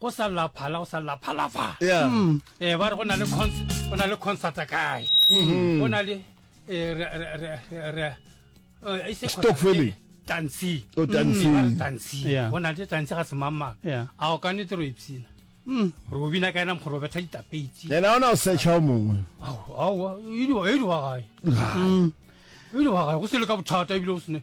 go sa lla phala go sa lla phalafala Yeah. Mm. eh ba re go na le cons- go na le concert kae Mhm. go na le eh, re- re- re- re- re- eh, e se concert, Stokfeleng. eh, tansi Oh, tansi. Mm, ba re tansi Yeah. go na le tansi ga semangmang Yeah. a o ka nete ro ipsina Mm. re o bina ka ena mokgoro o betha ditapetsi yena ona o searcha o mongwe aowa e di wa gae e di wa gae go se le ka bothata ebile o sene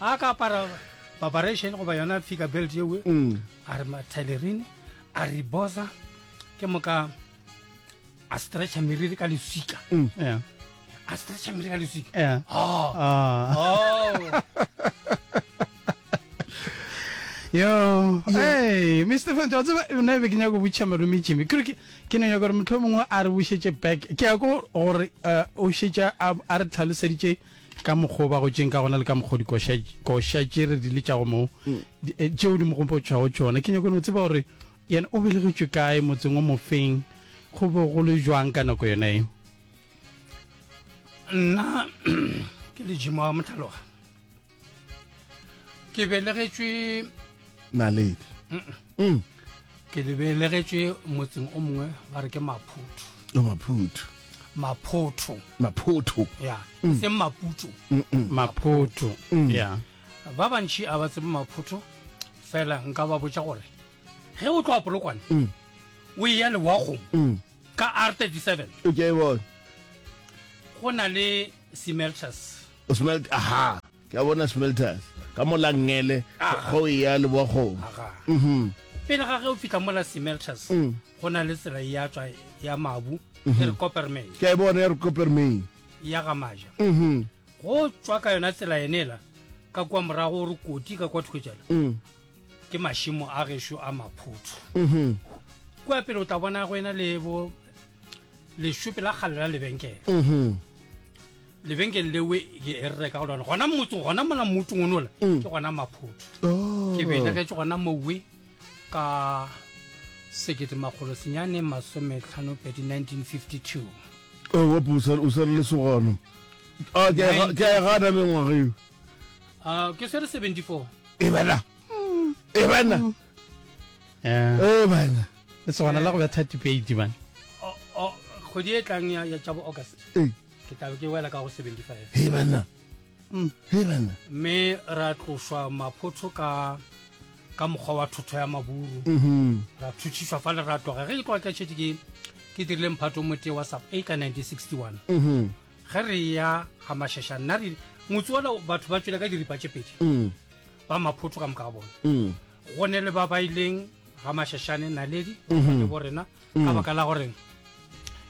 a ka apara babaration goba yona figure belt yewe mm. a re matailerine a re bosa ke moka a stretcha meriri ka lesika mm. yeah. a stretcha meriri ka lesika yeah. oh. Ah. Oh. yo hey mr fant wa tseba nna ebe ke nyaka go botšha malome jimmy kere ke ne nyaka gore motlho mongwe a re bušetse back ke ya ko gore eh, o šetša a re tlhaloseditše ka mokgwa o ba gotšeng ka gona le ka mokgwa o dikoša tše re di letšago moo mm. eh, tšeo di mo gopotšwago tšona ke nyakone o tseba gore yena o belegetšwe kae motseng o mofeng go be go le jwang ka nako yona eo nna ke lejimo wa motlhaloga ke belegetšwe naledi mm. ke lebelegetše motseng o mongwe ba re ke maphutho oh, maphutho maphotho maphotho ya mm. seng maputso maphotho mm. ya ba bantši a ba tsebe maphotho fela nka ba botša gore ge o tloa polokwane o e ya lewagong ka r 37 okay, go na le semelters aha Ke a bona Smelters ka mo la Ngele go eya Leboakgong. Pele ga ge o fihla mo la Smelters go na le tsela ya tšwa ya Mabu e re Coppermine. Ke a e bona ya re Coppermine. Ya ga Maja. Go tšwa ka yona tsela yenela ka kwa morago o re koti ka kwa thoko tšela ke mašimo a gešo a Maphuthu. Kua pele o tla bona go ena le bo lešope la kgale la lebenkele. lebenkeng lewe ke e reka go lona gona motse gona mola motseng o nola mm. ke gona maphotho oh. ke belegetse gona mowe ka sekete makgolo senyane masometlhano pedi 1952 o pusa o sere lesogano a ke a gana mengwaga eo a ke sere 74 e bana e bana mm. eh. e bana le sogana la go betha tipeiti bana kgwedi e tlang ya tšabo august ke tlabe ke wela ka go 75 he banna mm. he banna mme ra tloswa maphotsho ka ka mokgwa wa thotho ya maburu mm-hmm. ra thutshiswa fa le ra tloga ge ke tloga ke tšhetse ke ke dirile mphato mote wa sub a ka 1961 mm-hmm. ge re ya ga mashasha nna re motse ola batho ba tswele ka diripa tše pedi mm. ba maphotho ka moka ga bone mm. go ne le ba baileng ga mashashane naledi mm-hmm. le bo rena ka mm. baka la gore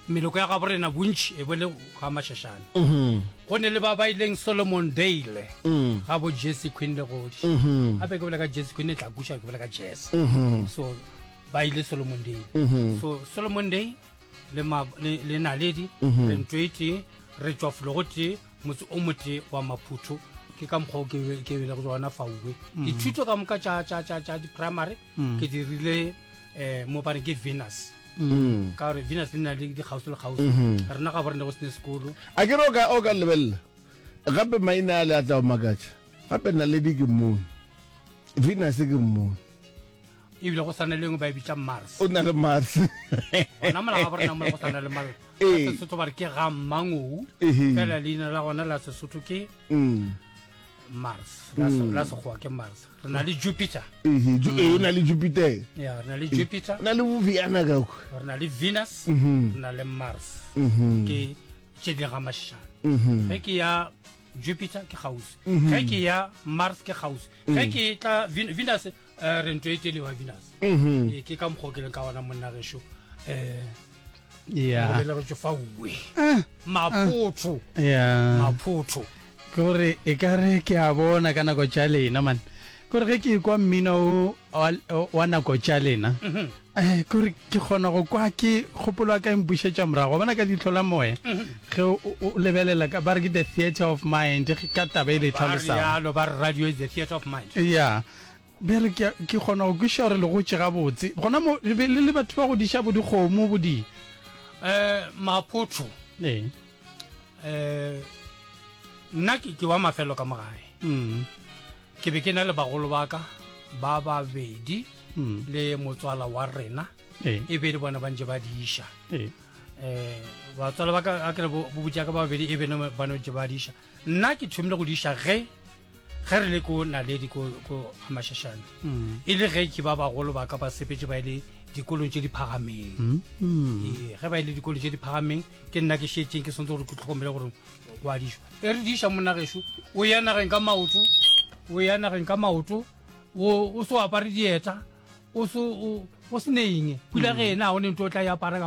meloko ya gabo rena bontši e bole ga mašašane mm-hmm. go ne le ba ba ileng solomon dale mm. ga bo jesse queen le godi gape mm-hmm. ke bola ka jesse queen e tla kuša ke bola ka jesse mm-hmm. so ba ile solomon day mhm. so solomon day le naledi mhm. re ntwe tee re tswa fologo tee motse o mote wa maphutho ke ka mokgwa o ke bele go tsona fauwe mhm. dithuto ka moka tša di-primary ke dirile um mo ba re ke venus Mm. ka gore venus le na le dikgausi le kgausi mm-hmm. rena ga bo re ne go sene sekolo a ke re o ka lebelela gape maina a le a tla o makatša gape naledi ke mmone venus ke mmone ebile go sana lengwe ba e bitsa mars o na le mars ona mola ga borena mola go sana le mars ee. sesotho ba re ke ga mmangou fela leina la gona la sesotho ke mm. mars la mm. la sekgowa ke mars re na le jupiter ehe ju e na le jupiter ya re na le jupiter na le viana ka ku re na le venus mhm. re na le mars mhm. ke tše di ga mashana mhm. ge ke ya jupiter ke gausi ge ke ya mars ke gausi ge ke tla venus um re ntho e tšelewa vinas mhm. ee, ke ka mokgwa o ke leng ka gona monna gešo um belegetso fa uwe eh, maphotho eh. maphotho ke gore e ka re ke a bona ka nako tša lena mane kore ge ke kwa mmino wa nako tša lena mhm. eh, kore ke kgona go kwa ke kgopolo wa ka empušetša morago bona ka ditlho la moya mhm. ge o lebelela ba re ke the theatre of mind ka taba e le tlhalosang ya Be re ke, ke kgona go kwešiša gore le gotše gabotse. Gona mo, le be le le batho ba go diša bo dikgomo, bo di. Eh, maphotho. Ee. Eh, nna ke, ke wa mafelo ka mogae. Mm. Ke be ke na le bagolo ba ka, ba babedi, mm. le motswala wa rena. Ee. E be le bona ba ntse ba diša. Ee. Eh, batswala ba ka, a ke re bo, bo botša ka babedi, e be ne ba no ntse ba diša. nna ke thomile go diša ge ge re le ko naledi ko gamašašane mm. e le ge ke ba bagolo ba ka ba sepetse ba e le dikolong tse di phagameng mm, mm. ee, ge ba e le dikolong tse di phagameng ke nna ke šetseng ke swantse gore ke tlhokomele gore go a diša e re diša monageso o ya nageng ka maoto o ya nageng ka maoto o se o apare dieta o se o se ne eng pula ge ena ga o ne nto o tla e apara ka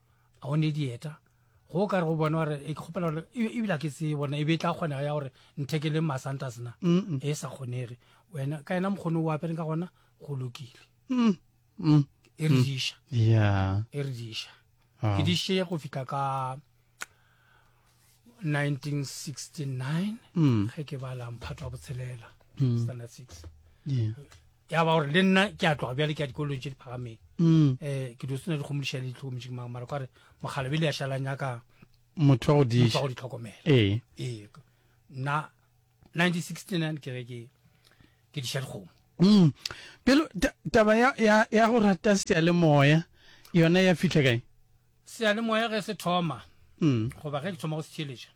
a o ne dieta go ka re go bona gore e kgopela gore e, e ebile ke se bona e be e tla kgonega ya gore nthekeleng masantas na e sa kgonege wena ka ena mokgono o apereng ka gona go lokile mm, mm. e re diša e re diša e diše go fitlha ka 1969 mm. ge ke bala mphato wa botshelela mm. standard six ya ba gore le nna ke a tloga bjale ke ya dikolong tse di phagameng um ke dio sena dikgomodiša le ditlhokomedi mang mara kare mogala bele ya šalanyaka motho wa go ditlhokomela ee nna 1969 ke ge ke ke diša dikgomo mm. pelo taba ya, ya, ya go rata sealemoya yona ya fitlha kae sealemoya ge se thoma mm. goba ge ke thoma go se tšheletša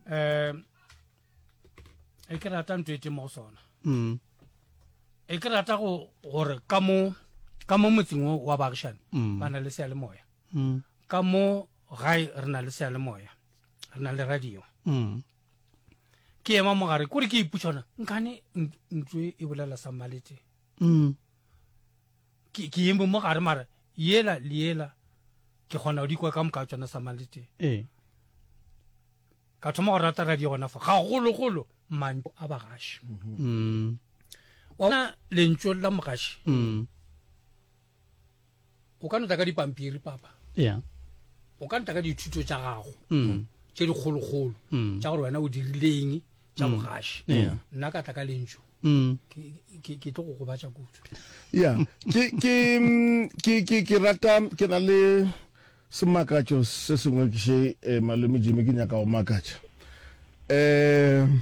um eh, e ke rata ntho e teng mo go sona mm. e ke rata gore ka mo ka mo motseng o wa baagišane mm. ba na le sealemoya mm. ka mo gae re na le sealemoya re na le radio mm. ke ema mogare kore ke iputšhona nkane ntso e bolela sa malete mm. ke eme mogare mara yela le yela ke kgona go dikwa ka moka tsona sa malete ee ka thoma go rata radio gona fa gagologolo manto a bagaši mm. ona lentso la mogaši mm. o ka nta ka dipampiri papa yeah. o ka nta ka dithuto tša gago mm. tše dikgolokgolo mm. tša gore wena o dirileng tša mm. bogaši mm. nna ka tla ka lentso mm. ke tlo go gobatša kudu ya ke rata ke na le semakatšo se sengwe ke še eh, malome jime ke nyaka go makatša um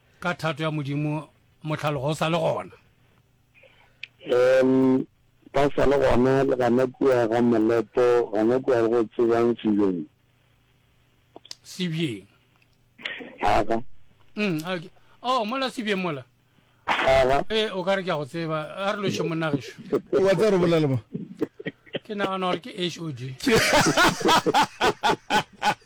ka thato ya modimo mohlalogo o sa le gona um ba sa le gona le gana kua ga molepo gana kua go tsebang sebjeng sebjeng aga mm okay oh mola sebjeng mola aga eh o ka re ke go tseba a re loše monagesho wa tsa re bolela ba ke nagana gore ke hod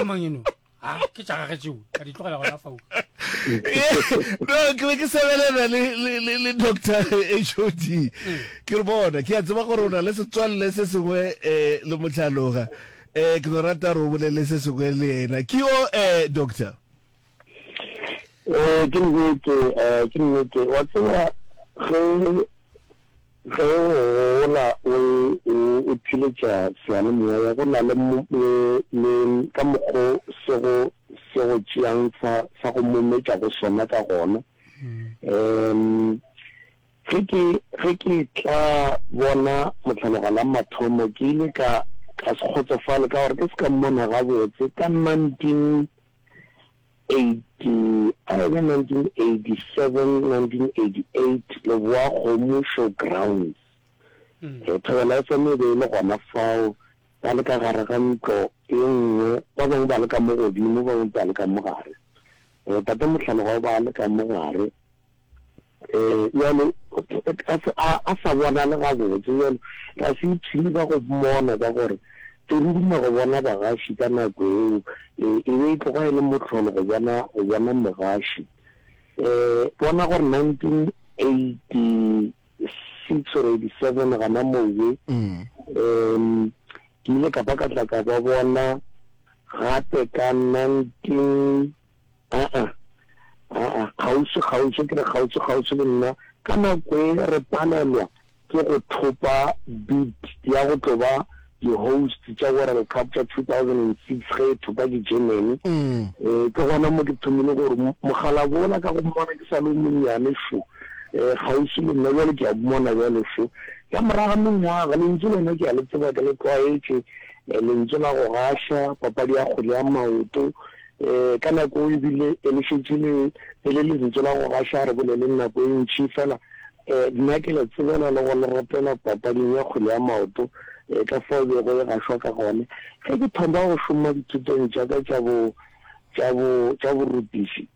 amang eno a ke tša gage tšeo ka di tlogela gona fao no ke be ke sebelena le doctor hod mm. ke re bona ke a tseba gore o na le setswalle se sengwe um le motlhaloga um ke no rata gore o bolele se sengwe le ena ke yo um doctor Eh, ke nnete, eh, ke nnete. Wa tseba, ge, ge o gola o, o, o philetša seyalemoya, go na le, le, le ka mokgo se go, se go tšeang sa, sa go mometša go sona ka gona. Mm. Um, ge ke, ge ke tla bona motlhaloga la mathomo, ke ile ka, ka se kgotsofale ka gore ke se ka mmona gabotse ka 19, 1987-1988 Leboakgomo Showgrounds. Thobela FM e be e le gona fao, ba le ka gare ga ntlo e nngwe, ba bangwe ba le ka mo godimo, ba bangwe ba le ka mo gare. Tate Mohlalogo ba le ka mo gare, Ee, bjale, a se a, a sa bonale gabotse, bjale, ga se ithini ka go mmona ka gore e ruma go bona bagaši ka nako eo, e, e be e tloga e le mohlolo go bona, go bona mogaši. Um, bona gore 1986 or 87 gana moo be, um, ke ile ka ba ka tla ka ba bona gape ka 19, Aa, aa, kgauswi-kgauswi, ke re kgauswi-kgauswi le nna, ka nako e re palelwa ke go thopa bid ya go tlo ba di-host tša World Cup tša 2006 ge e thopa ke Germany. E, ke gona mo ke thomile gore mogalabo ola ka go mmona ke sa le o monnyane šo, e, kgauswi le nna, bjale ke a mmona bjale šo. Ka morago ga mengwaga, lentšu lona ke a le tseba, ke le tlwaetše, e, lentšu la go gaša, papadi ya kgwele ya maoto, um ka nako o ebile e le šetše le e le lentso la go gaša re boleleng nako e ntši fela um nna ke le tsebela le go le ropela papading ya kgwele ya maoto um ka fao bego e gašwa ka gone ge ke thoma go šoma dithutong tša ka tša bo tša bo tša borutiši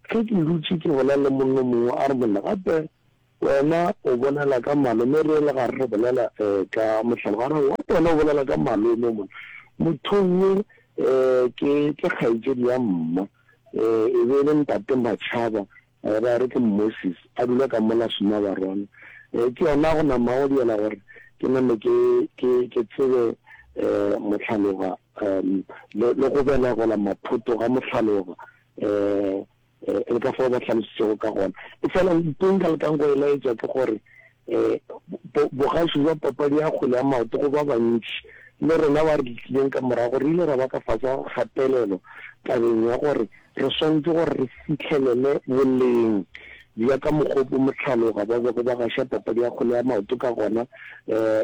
ge ke dutše ke bolela le monno mongwe a re monna gape Wena o bolela ka malome re le gare re bolela eh ka mohlalo ga re what wena o bolela ka malome mona mothong ye eh ke ke kgaetšedi ya mma eh e be le ntate Matšhaba eh ba re ke Moses a dula ka mola suma barwana eh ke yona go nama go diela gore ke name ke ke ke tsebe eh mohlaloga eh le go bela gola maphoto ga mohlaloga eh le ka fao ba hlalositšego ka gona. Efela ntho e nka lekang go e laetša ke gore bogašo bja papadi ya kgwele ya maoto go ba bantši le rena ba re letlileng ka morago re ile ra ba ka fase ga kgatelelo tabeng ya gore re swanetše gore re fihlelele boleng bja ka mokgwa o mohlaloga ba bego ba gaša papadi ya kgwele ya maoto ka gona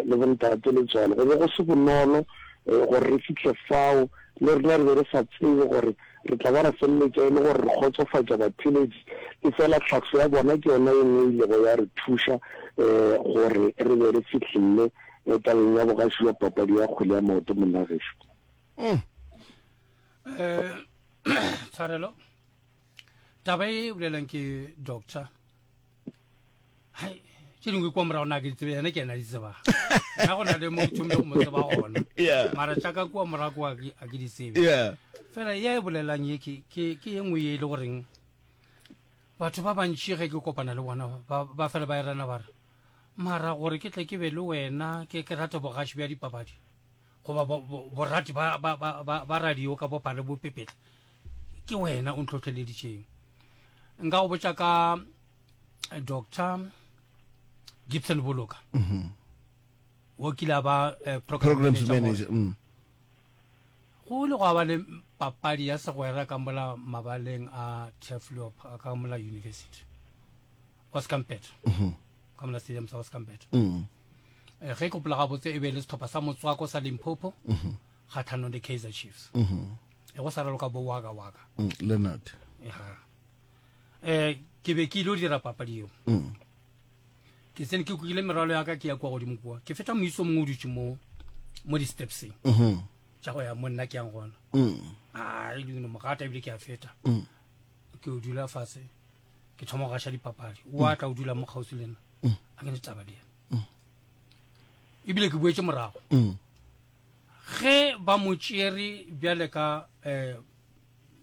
le bontate le tsone go be go se bonolo gore re fihle fao le rena re be re sa tsebe gore re tla ba ra feleletša e le gore re kgotsofatša batheeletši, efela tlhahlo ya bona ke yona ye nngwe e ilego ya re thuša gore re be re fihlelle tabeng ya bogaši bja papadi ya kgwele ya maoto. Monnagešu. Tshwarelo. Taba e bolelwang ke Doctor. tše dingwe kwa morago na ke ditsebe yena ke ena di tsebang na go na le mo tšhombe go mo tseba gona mara tšaka kua morago a ke di tsebe fela ya e bolelelang ye ke ye nngwe ye e le goreng batho ba bantši ge ke kopana le bona ba fela ba erana ba re mara gore ke tle ke be le wena ke ke rate bogaši bja dipapadi goba borati ba radio ka bopale bo pepetla ke wena o ntlhotlheleditšeng nka go botša ka eh, doctor gibson boloka mm -hmm. wo kile ba eh, program manager mm. go le go ba le papadi ya segwera ka mola mabaleng a teflop ka mola university oscampet mm -hmm. ka mola stadium sa oscampet mm -hmm. e, eh, ge kopola gabotse e be le setlhopha sa motswako sa limpopo mm -hmm. kgatlhanong le kaizer chiefs mm -hmm. e go sa raloka bo waka waka mm, leonard um ke be ke ile o dira papadi eo mm. ke tsene ke kukile merwalo yaka ke ya kwa godimo kua ke feta moiso mongwe o dutse mo mo di-stepseng tša mm-hmm. go ya mo nna ke yang gona a e dino mogata ebile ke a feta ke o dula fatshe ke thoma go gaša dipapadi o atla o dula mo kgauswi le nna a ke ne taba le ena ebile ke boetse morago Ge ba mo tšere bjale ka eh,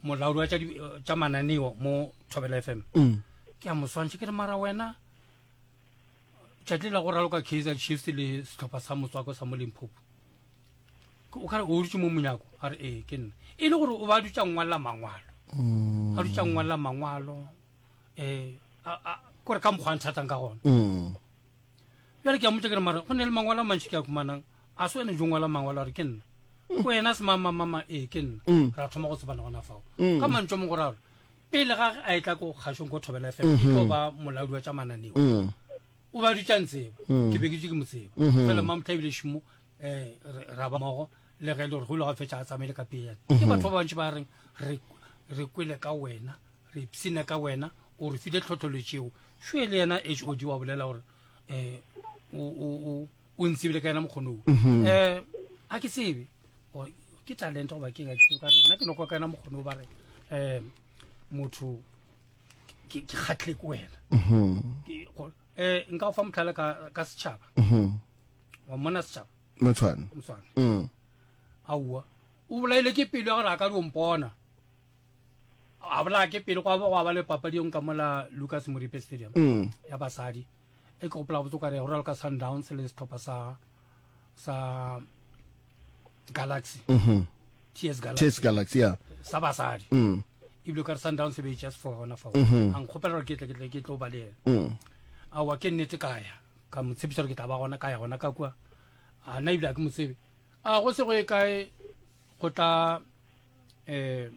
molaodi wa tša di- eh, tša mananeo mo thobela f m Mm. ke a mo swantšha ke re mara wena tšatli la go raloka kaizer chiefs le setlhopha sa motswako sa mo limphopo Ke- o kare o dutse mo monyako a re ee ke nna e le gore o ba dutse a ngwalela mangwalo Mm. a dutse a ngwalela mangwalo um kore ka mokgwa a nthatang ka gona Mm. bjale ke a motse ke re mara go ne le mangwalo a mantši ke a kumanang a se wene jo ngwala mangwalo a re ke nna mm. ko ena se mamamama ee ke nna mm. ra thoma go tsebana gona fao mm. ka mantso mongwe ra re pele ga a e tla ko kgašong ko thobela fela mm-hmm. e tlo ba molaodi wa tša mananeo o ba dutša ntseba ke be ke tse ke mo tseba mm-hmm. fela mamotlha ebile šimo eh ra ba mogo le ge e le gore go ile ga fetša a tsamaile ka pele ke mhm. batho ba bantši ba reng re kwele ka wena re ipsine ka wena o re file tlhotlholetseo šoe le yena h o di wa bolela gore um o ntsebile ka yena mokgonoo um mhm. eh, a ke tsebe ke talente goba ke nna ke nokwa ka yena mokgonoo ba re um motho ke kgatlhe ke wena um nka o fa motlhala ka setšhaba wa mmona setšhaba motshwane motshwane mm. aowa o bolaile ke pelo ya gore a ka di ompona a bolaya ke pele go go ba le papadi yong ka mola lucas moripe stadium mm. ya basadi e ke gopola botse kare go ralo ka sundowns le setlhopha sa sa galaxy mm-hmm. ts galaxy galaxy ya sa basadi mm. ebile ka re sundowns e be e just for gona fa mm-hmm. a nkgopela gore ke tle ke tle ke tlo ba le ena mm. aowa ke nnete kaya ka mo tshepiša gore ke tla ba gona ka ya gona ka kua a na ebile a ke mo tsebe a go se go e kae go tla um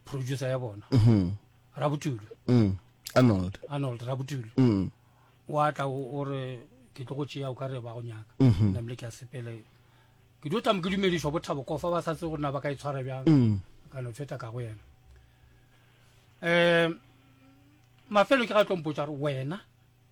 producer ya bona mm-hmm. rabotulo mm. arnold arnold rabotulo mm. wa tla o re ke tlo go tšea o ka re ba go nyaka mm-hmm. namile ke a sepele ke dio tamo ke dumedišwa bothabo kofa ba sa tse gore na ba ka e tshwara bjang mm. ka no tshweta ka go yena um mafelo ke ga tlompotsa gore wena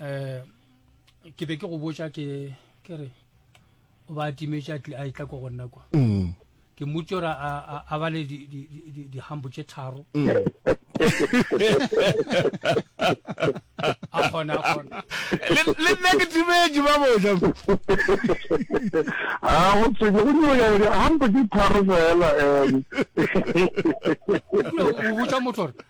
eh ke be ke go botša ke ke re o ba timetša a itla ko go nna kwa mm. ke mmutse gore a ba le dihambo tše tharo mm. a kgona a kgona le nna ke timetše ba boja a go tsebe go nyaka gore hambo tše tharo fela um o botsa motho gore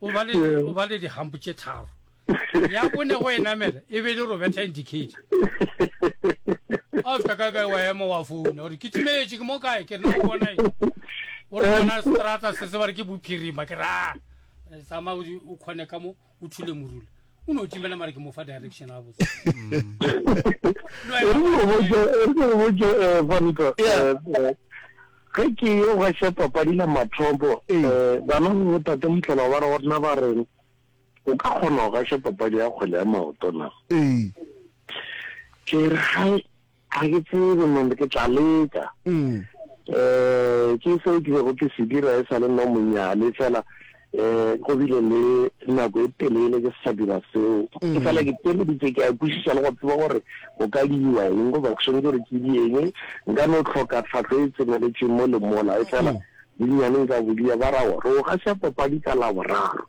O ba le, o ba le dihampo tše tharo. Ya bone go e namela, e be e le Roberta Ndikedi. A fihla kae kae wa ema wa founa, o re, ke timetše, ke mo kae, ke re, na o bona eng? O re, bona seterata se, se ba re ke Bophirima, ke re, aa, tsamaya o kgone ka mo, o thule morula. o no timela mara ke mo fa direction a botse ge ke yo ga se papadi la mathopo um bana go tata motlhela ba re go rena ba reng o ka kgona go gaša papadi ya kgwele ya maoto na ke re Ga ke tsebe mom, ke tla leka. Eh, ke seo ke bego ke se dira e sa le nna monyane, fela eh go bile le nako e telele ke se sa dira seo. Ke fela ke teleditše, ke a kwešiša le go tseba gore go ka diwa eng goba ke swanetše gore ke di eng. Nka no hloka tlhahlo e tseneletšeng mo le mola, efela bonnyane nka bo dia. Ba ra, Re o gasa papadi ka Laboraro.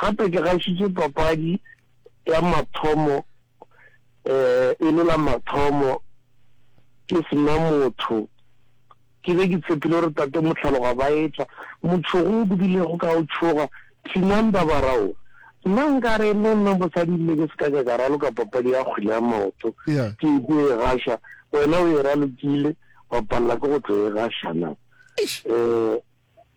Gape ke gašitše papadi ya mathomo um e le la mathomo ke se na motho. Ke be ke tshepile gore Tate Mohlaloga ba etla. Motšhogo o bodilego ka go tšhoga, Thinang dabara o! Nna nkare le nna mosadi ebile ke se ka ka ka raloka papadi ya kgwele ya maoto ke ekwe e gaša, wena o e ralokile, wa palela ke go tlo e gaša na? um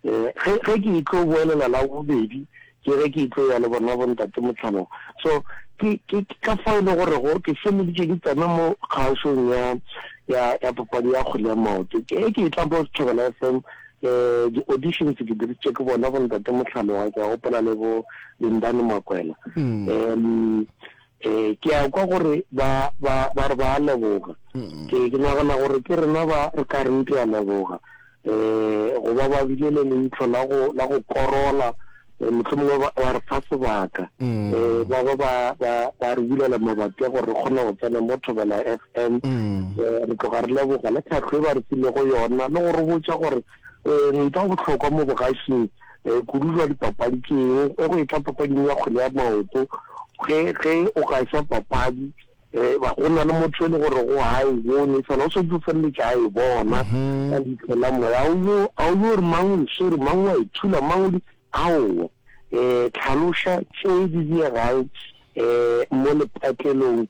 Ge, ge ke etlo boelela la bobedi, ke ge ke etlo ya le bona bo Ntate Motlhanong. So, ke, ke, ke ka fao e lego gorego ke feleditše ke tsena mo kgaošong ya, ya, ya papadi ya kgwele ya maoto. Ke ge ke etla mo Thobela FM, di-auditions ke diritše ke bona bo Ntate Motlhanong, ke a gopola le bo Lindani Makwela. Um, Ee, ke a kwa gore ba, ba, ba re ba a leboga. Ke, ke nagana gore ke rena ba re ka reng ke a leboga. Um, go ba ba bile le leitlho la go, la go korola, um, mohlomongwe ba, ba re fa sebaka. Um, ba ba ba, ba, ba re bulela mabapi a gore re kgone go tsena mo Thobela FM. Um, re tloga re leboga le tlhahlo e ba re filego yona, le go re botša gore Ntwa ya bohlokwa mo bogašing kudu jwa dipapadi ke eng? E go etla papading ya kgwele ya maoto, ge ge o gaša papadi go na le motho e le gore go ha e bone fela o setse o feleletša a e bona ka leitlho la moya. A o yo re mang o e swere, mang wa e thula, mang o di aowa. Tlhaloša tše di diegang mo lepatlelong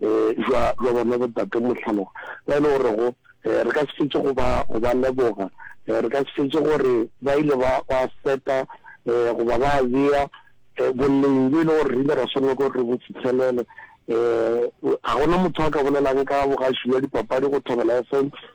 jwa jwa bona botate mohlaloga ba e le gorego re ka se fetse go ba go ba leboga re ka se fetse gore ba ile ba ba seta goba ba bea boleng bo e le gore re ile ra swanela gore re bo fitlhelele um ga gona motho a ka bolelang ka bogaši bja dipapadi go thobela fm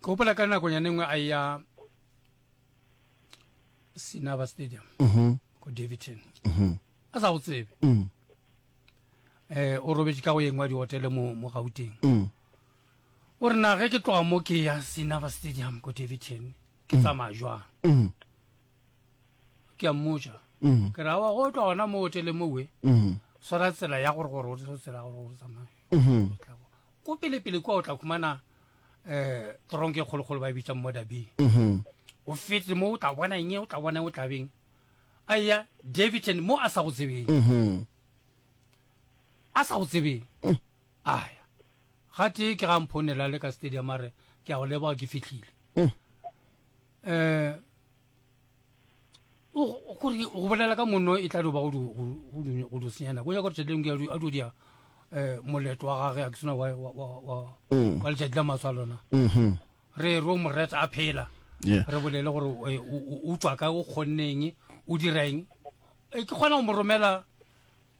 ke gopola ka nakonyane nngwe a ya sinaba stadium mhm. ko davidton mhm. a sa go tsebe um o robetse ka go yeng wa dihotele mo gauteng o re nage ke tloga mo ke ya sinaba stadium ko davidton ke tsamaya jwang ke a mmoja ke ra wa go tloga gona mo hotele mowe swara tsela ya gore gore o tsela gore o tsamaye ko pelepele kwa o tla khumana um tronke kgolokgolo ba e bitsang mo dabeng mhm. o fete mo o tla bona eng o tla bona o tlabeng a ya davidson mo a sa go tsebeng mhm. a sa go tsebeng mm. aya ga tee ke ga mphonela le ka stadium a re ke a go leboga ke fitlhile um kore go bolela ka monno e tla doba go do senyana ko nyaka tšheleng ke a do dia um moleto wa gage a ke sena wa mm. letšatši la maswa lona mm-hmm. re ro moreta a phela re bolele gore eh, o tswa ka o kgonneng o direng eh, ke kgona go mo romela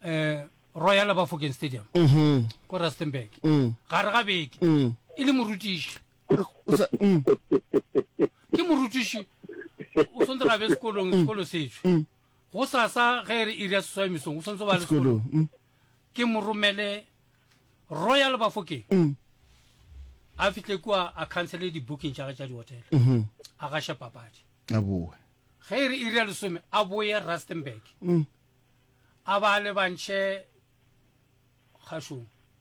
um royal bafoken stadium mm-hmm. ko rustenburg mm. gare ga beke e le morutiši o sa mm. ke morutiši o swantse ra be sekolong mm. sekolo setsho mm. go sasa ge e re iri ya seswai mesong o swantse ba le sekolong mm. ke mo romele royal bafokeng mm. a fihle kua a cancele di-booking tša ge tša di-hotel mm -hmm. a gaše papadi a boe ge e re iri ya lesome a boye rustenburg mm. a ba le bantšhe kgašong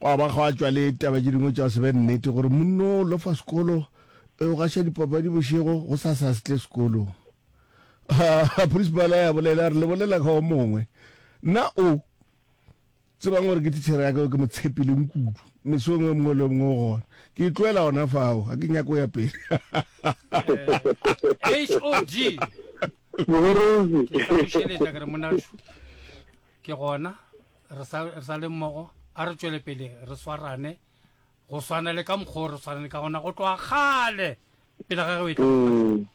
Gwa ba gwa tšwa le taba tše dingwe tša se be nnete, gore monno o lofa sekolo, o gaša dipapadi bošego, go sa sa se tle sekolong. Ha principala ya bolela, a re le bolela ka o mongwe. Nna o tsebang gore ke tichere ya ka, ke mo tshepileng kudu, mesong e mongwe le mongwe o gona. Ke itloela gona fao, ga ke nyako ya pele. HOD! Ke tla go šeletša ke re, Monashu, ke gona. re sa re sa le mmogo a re tšwele pele re swarane go swana le ka mokgwa re swanane ka gona go tloga gale pele ga re mm,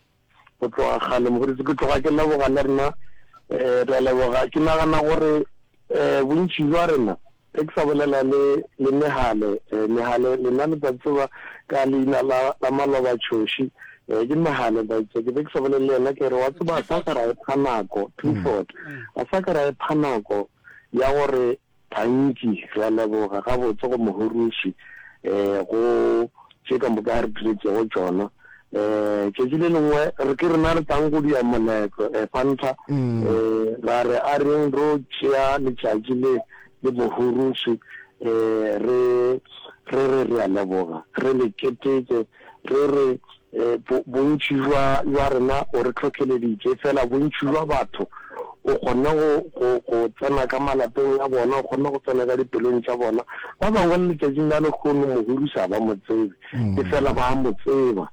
go tloga gale mogodi ke tloga ke leboga le rena um re a leboga ke nagana gore um bontši jwa rena ge ke sa bolela le le mehale um mehale lena le tsa tseba ka leina la maloba tshoši Ee, ke nagane baitse ke be ke sa bolele le yena ke re wa tseba a sa ka ra epha nako Clifford a sa ka ra epha nako ya gore gantši re a leboga gabotse go mohoroši um go tše ka moka a re diretšego tšona um tšatši le lengwe re ke rena re tlang go dia moletlo um fanta um ra re a reng ro tšea letšatši le le mohoroši um re re re re a leboga re le keteke re re, Bontši bja rena o re hlohleleditše, fela bontši bja batho o kgonne go tsena ka malapeng a bona, o kgonne go tsena ka dipelong tša bona. Ba bangwe le letšatšing la lehono mohuri se a ba mo tsebe, e fela ba a mo tseba.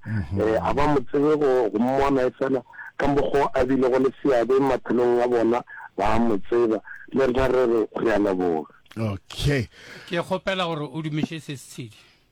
A ba mo tsebe go mmona, e fela ka mokgwa o a bilego le seabe maphelong a bona, ba a mo tseba. Le rena re re, Re a leboga. Okay. Ke kgopela gore o dumiše se setshedi.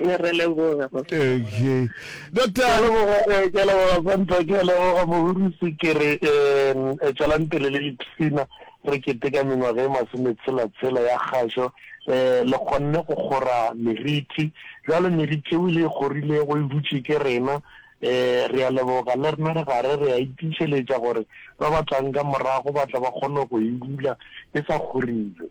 Ee, re leboga. Okay. Doctor. Ke a leboga, eh, ke a leboga Santa, ke a leboga mohurisi ke re um eh, tšwelang pele le dipshina re keteka mengwaga e masometshela-tshela ya kgašo um le kgonne go kgora meriti jalo meriti eo le e kgorilego e dutše ke rena um re a leboga le rena re gare re a itišeletša gore ba ba tlang ka morago ba tla ba kgone go e dula e sa kgorilwe